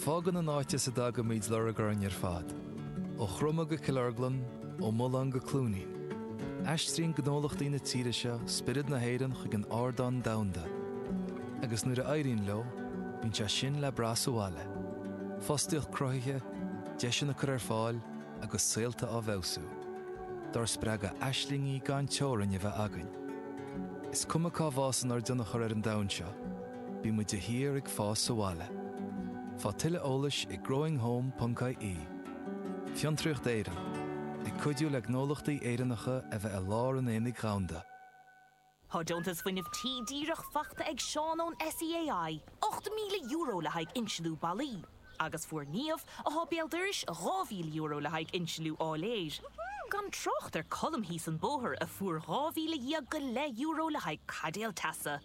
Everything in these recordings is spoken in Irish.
Fágann an áit as a dtagaimid lorg orainn ar fad, ó Chromadh go Cill Orglan, ó Mulán go Cluainín. Aistríonn gnólachtaí na tíre seo spiorad na hÉireann chuig an ardán domhanda, agus nuair a éiríonn leo, bíonn sé sin le brath sa bhaile, fostaíocht cruthaithe, deiseanna curtha ar fáil agus saolta á bhfeabhsú, dár spreagadh aislingí gan teorainn a bheith againn. Is cuma cá bhfásann ár dtionchar ar an domhan seo, Bíonn muid de shíor ag fás sa bhaile. Faigh tuilleadh eolais ag growinghome.ie Fiontraíocht Éireann, ag cuidiú le gnólachtaí Éireannacha a bheith i lár an aonaigh dhomhanda. Tá deontas Fuinneamh Tí díreach faighte ag Seán ón SEAI, €8,000 le haghaidh insealú ballaí, agus fuair Niamh, a thá béal dorais, €2,000 le haghaidh insealú áiléir. Gan trácht ar Colm thíos an bóthar, a fuair €12,000 go leith euro le haghaidh caidéal teasa.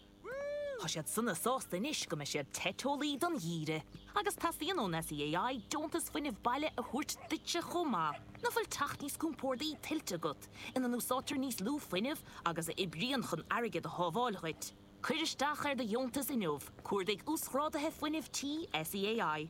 Tá siad sona sásta anois go mbeidh siad te teolaí don gheimhreadh agus teastaíonn ón SEAI deontas fuinnimh baile a thabhairt duitse chomh maith. Nach bhfuil teach níos compórdaí tuillte agat ina n-úsáidtear níos lú fuinnimh agus a oibríonn chun airgead a shábháil dhuit? Cuir isteach ar do dheontas inniu, Cuardaigh Uasghráduithe Fuinnimh Tí SEAI.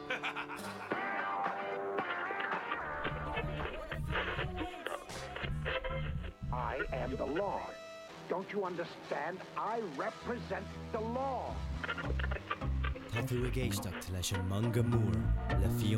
I am the law. Don't you understand? I represent the law. Tá tú ag éisteacht leis An Meangadh Mór le Fiona.